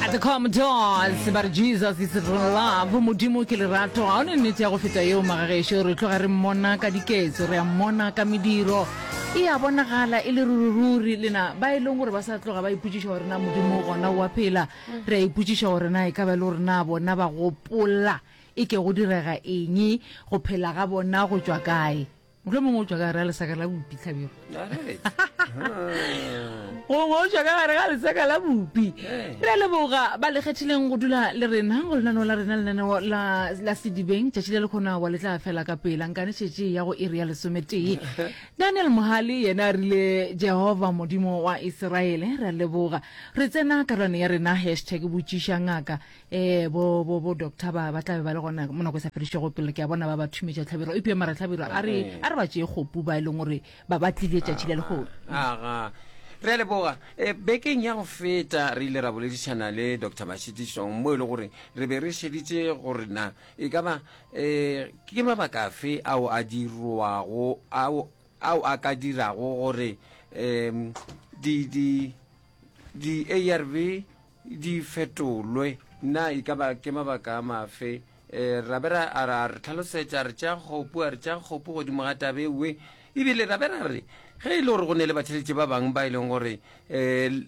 At the Commodores ba re Jesus is love modimo ke lerato ga one nnete ya go feta yeo magagešo re tloga re mmona ka diketso re a mmona ka mediro e a bonagala e le rurururi lena ba e leng gore ba sa tloga ba ipotšiša gore na modimo gona wa phela re a ipotšiša gore na e ka ba e le gore na bona ba gopola e ke go direga eng go phela ga bona go tšwa kae mohlomongwe o tswa ka gare ga lesaka la bopi tlhabego gongwe o tswa ka gare ga lesaka la bopi re a leboga ba le kgethileng go dula le rena go lenaneo la rena lenaneo la sedibeng tšatši le le kgona wa le tla fela ka pela nkane šetše ya go iri ya lesometee daniel mohale yena a rile jehova modimo wa iseraele re a leboga re tsena karolwane ya rena hashtag botšiša ngaka eh bo bo bo doctor ba ba tlabe ba le gona mo nako e sa fedišego pele ke a bona ba ba thumetša tlhabiro epio mara tlhabiro a re eh. a re ba tšee kgopu ba e leng gore ba ba tlile tšatši le legogo aga re a leboga eh, bekeng ya go feta re ile ra boledišana le dr mashitišong mo e le gore re be re šeditše gore na e ka ba um ke mabaka afe ao a dirwago ao a ka dirago gore um di-arv di fetolwe. Na e ka ba ke mabaka a mafe? Ra be ra a re hlalosetša, a re tšea kgopu, a re tšea kgopu godimo ga taba e nngwe. E bile ra be ra re ge e le gore go ne le batheletši ba bangwe ba e leng gore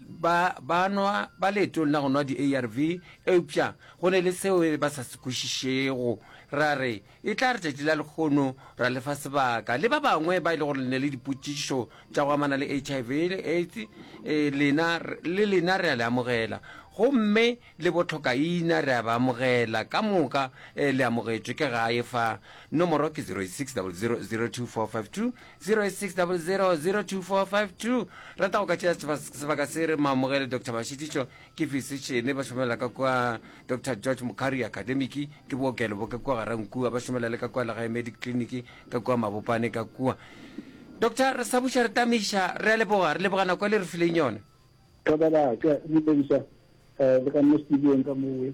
ba ba nwa ba leetong la go nwa di-ARV, eupša go ne le seo ba sa se kwešišego, ra re E tla re tšatši la lekgono ra le fa sebaka le ba bangwe ba e le gore le ne le dipotšišo tša go amana le HIV le AIDS eh, lena le lena re a le amogela gomme le botlhokaina re a ba amogela ka moka eh, le amogetšwe ke gae fa nomoro ke 0600024520 0600024520 rata go ka tšea sebaka se re mo amogele dr mashitišo Ke fisetšene ba šomela ka kwa Doctor George Mokgari Academic, ke bookelo bo ka kwa Garankua, ba šomela le ka kwa Legae Medic Clinic ka kwa Mabopane ka kwa. Doctor, re sa buša re tameiša, re a leboga, re leboga nako e le re fileng yona. Ka ba baka le Lisa le ka nna studiong ka mowe.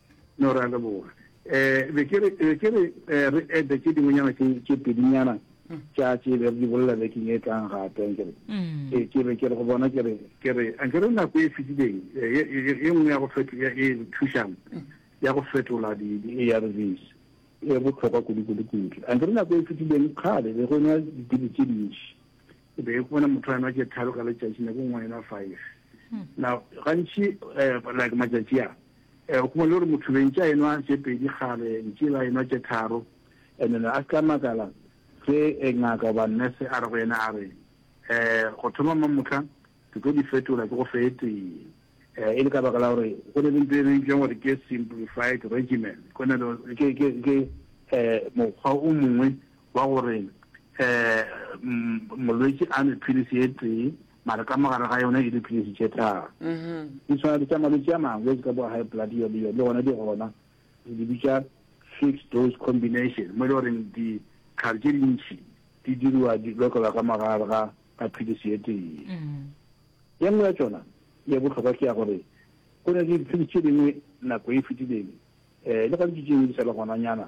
No, re a leboga. Eh, be ke re, be ke re, eh, re ede tše dingwenyana tše, tše pedinyana tša tše be re di bolela bekeng e tlang gape, anke re. Ke, ke be ke re go bona, ke re, ke re, anke re nako e fetileng, eh, ye, ye, ye nngwe ya go feto, ya, e re thušang, ya go fetola di, di-ARVs, e bohlokwa kudu, kudu, kudu. Anke re nako e fetileng, kgale, be go nwa dipilisi tše dintši. E be e go bona motho a nwa tše tharo ka letšatši, nako e nngwe a enwa five. Now, gantši, eh, like matšatši a, O kgone gore motho bentši a enwa tše pedi kgale ntši ba enwa tše tharo and then a se ka makala se ngaka goba nurse a re go yena a re go thoma mamohla ke tlo di fetola ke go fe e tee e le ka baka la gore go ne le ntho e bentšweng gore ke simplified regimen go na le ke mokgwa o mongwe wa gore um molwetši a nwe philisi e tee mare ka mogare ga yona e diphilisi tše tharo di tshwana le tša malwetši a mangwe ka bo high blood yo le yo le gona di gona re di bitša fixed dose combination mo e le goreng ditlhare tše dintšhi di diriwa di lokelwa ka mogare ga ka philisi e tee ye nngwe ya tsona ye bohlokwa ke ya gore go ne le diphilisi tše dingwe nako e fetileng um le gantši tše dingwe di sa le gonanyana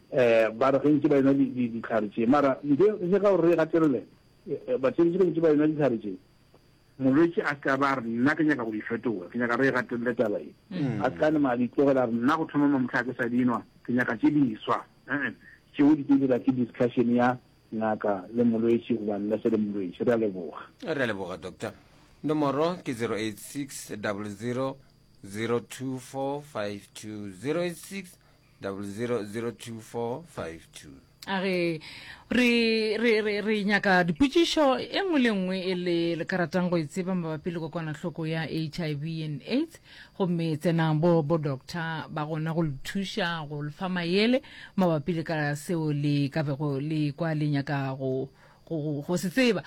Ba re ge ntše ba enwa dihlare tše. Mara ntle le ka gore re gatelele, batšeletše ge ntše ba enwa dihlare tše, molwetši a se ka ba a re, Nna ke nyaka go di fetola. Ke nyaka re e gatelele taba ye. A se ka nama a di tlogela a re, Nna go thoma mamohla ga ke sa di nwa. Ke nyaka tše diswa. Ee. Tšeo di tlo dirwa ke discussion ya ngaka le molwetši goba nurse le molwetši. Re a leboga. Re a leboga, Doctor. Nomoro ke 0860002452, 0860002452. 0002452 a re re re re re nyaka dipotšišo e nngwe le nngwe e le le ka ratang go e tseba mabapi le kokwanahloko ya hiv and aids gomme tsenang bo bo doctor ba gona go le thuša go le fa mayele mabapi le ka seo le ka bego le kwa le nyaka go go go se tseba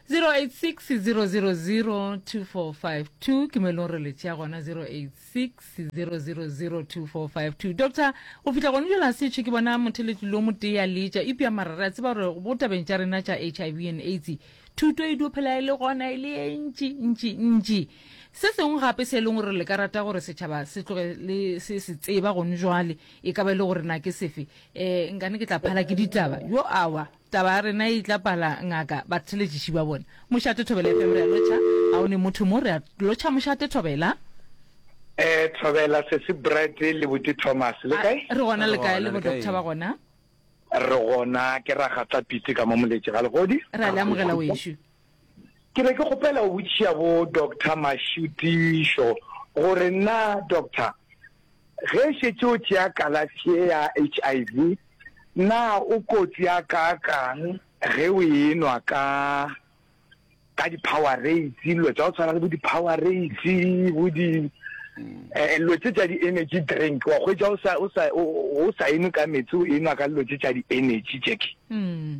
086 000 2452 ke mo e leng gore le tšea gona 086 6000245 doctor go fihla gone jela se tšhe ke bona motheletli lo motee a leetša epja mara re a tseba gore bo tabeng tša rena tša h i v and aids thuto e dio phela e le gona e le e ntši ntši ntši se sengwe gape se e leng gore le ka rata gore setšhaba se tloge le se se tseba gone jwale e ka ba e le gore na ke sefe um nkane ke tla phala ke ditaba yo awa Taba ya rena e itla pala ngaka batheletšiši ba bona mošate thobela FM re a lotšha ga o ne motho mo re a lotšha mošate thobela. Eh thobela sesi Brett le buti Thomas le kae? Re gona le kae le bo doctor ba gona? Re gona ke ra ga tla pitse ka mo moletše ga legodi. Re a le amogela wešo. Ke be ke kgopela go botšiša bo Doctor Mašutišo gore na Doctor ge šetše o tšea kalafi ye ya HIV na o kotsi ya kaakang ge o enwa ka ka di Powerades dilo tsa go tshwana le bo di Powerades bo di eh lo tse tsa di energy drink wa go ja o sa o sa o sa eno ka metsi o enwa ka lo tse tsa di energy tšeke. Mm.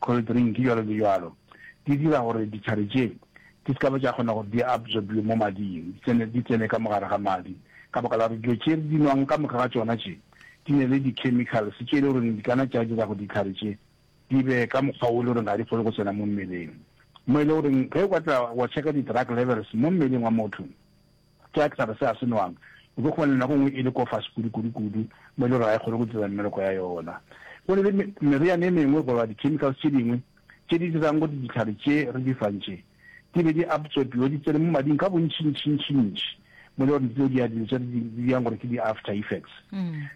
cold drink, bjalo le bjalo, di dira gore ditlhare tše di se ka ba tša kgona gore di absorbiwe mo mading, di tsene, di tsene ka mogare ga madi, ka baka la gore dilo tše re di nwang ka moka ga tšona tše di ne le di-chemicals tše e le goreng di kana tša dira gore ditlhare tše di be ka mokgwa wo e le goreng ga di kgone go tsena mo mmeleng, mo e le goreng ge o ka tla wa checka di-drug levels mo mmeleng wa motho, Jack taba se a se nwang o tlo kgona nako ngwe e le kofase kudu kudu kudu mo e le gore ga e kgone go dira mmereko ya yona go le meriane e mengwe goba di chemicals tše dingwe tše di dirang go di ditlhare tše re di fang tše di be di absorbiwe di tsene mo mading ka bontšhi ntšhi ntšhi ntšhi mo le gore dilo di a dilo tše di yang gore ke di after effects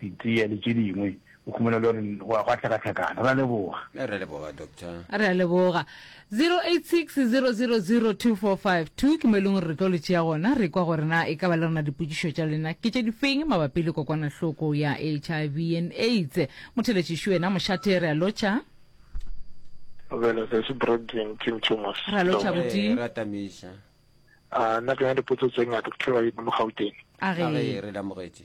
Ditee le tše dingwe. O khumela e le gore go a go a hlakahlakana. Re a leboga. Re a leboga, Doctor. Re a leboga. 0860002452 ke mo e leng gore re tlo le tšea gona re kwa gore na e ka ba le rena dipotšišo tša lena ke tše difeng mabapi le kokwanahloko ya HIV and AIDS. Motheletši šo ena mošate re a lotšha. Bjalo se se Brandon Tim Thomas. Re a lotšha Re abuti. re atamiša. Ah, nna ke na le dipotso tse ngata ke tlo ba mo Gauteng. A A re. re re le amogetše.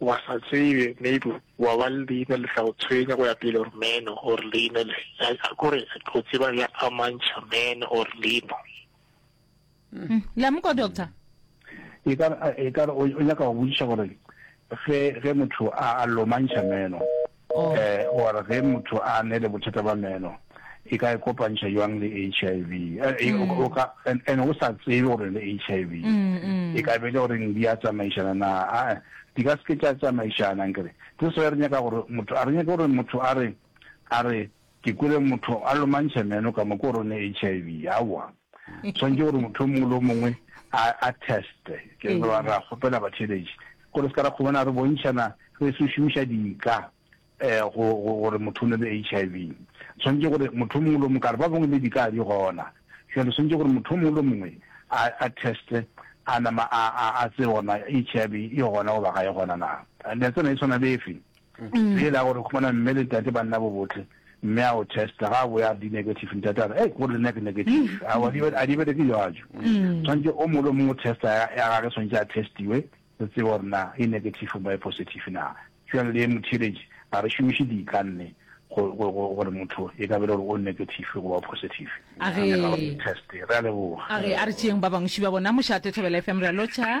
Wa sa tsebe, maybe wa ba le leina le tla go tshwenya go ya pele, or meno, or leina le, a kore go tseba ya amantšha meno or leino. Hm, la mo kwa doctor? E ka re, e ka re o nyaka go botšiša gore ge, ge motho a, a lomantšha meno, O a re ge motho a ne le bothata ba meno, e ka e kopantšha bjang le HIV? O ka, and o sa tsebe gore le HIV. E ka be le gore di a tsamaišana na? A-e, di ka se ke tša tsamaišana. Nkere se sengwe re nyaka gore motho, a re nyake gore motho a re, a re, Ke kwele motho a lomantšha meno ka moka o re o ne HIV. Aowa. Swanetše gore motho o mongwe le o mongwe a, a teste. Ke re ba ra kgopela batheeletši gore se ka ra kgobana re bontšhana re se šomiša dika um go, go, gore motho o ne le HIV. Swanetše gore motho o mongwe le o mongwe, ka re ba bangwe le dika a di gona. Bjale swanetše gore motho o mongwe le o mongwe a, a teste a nama a, a, a tsebe gore na HIV e gona goba ga e gona na. Netsana e swana le efe? Ke yela gore khumana mme le tate ba nna bobotle mme a o testa ga bo ya di negative ntate a re hey gore nna ke negative mm. a wa di a di bele ke yajo mm. tshwantse o molo mo testa ya ga re tshwantse a testiwe re tsebe gore na e negative ba e positive na jwale le motheletsi a re shumishe di ka nne gore motho e ka bele gore o negative go ba positive a re test re a leboga a re a re tšeeng ba bangwe ba bona mošate thobela fm re a lotsha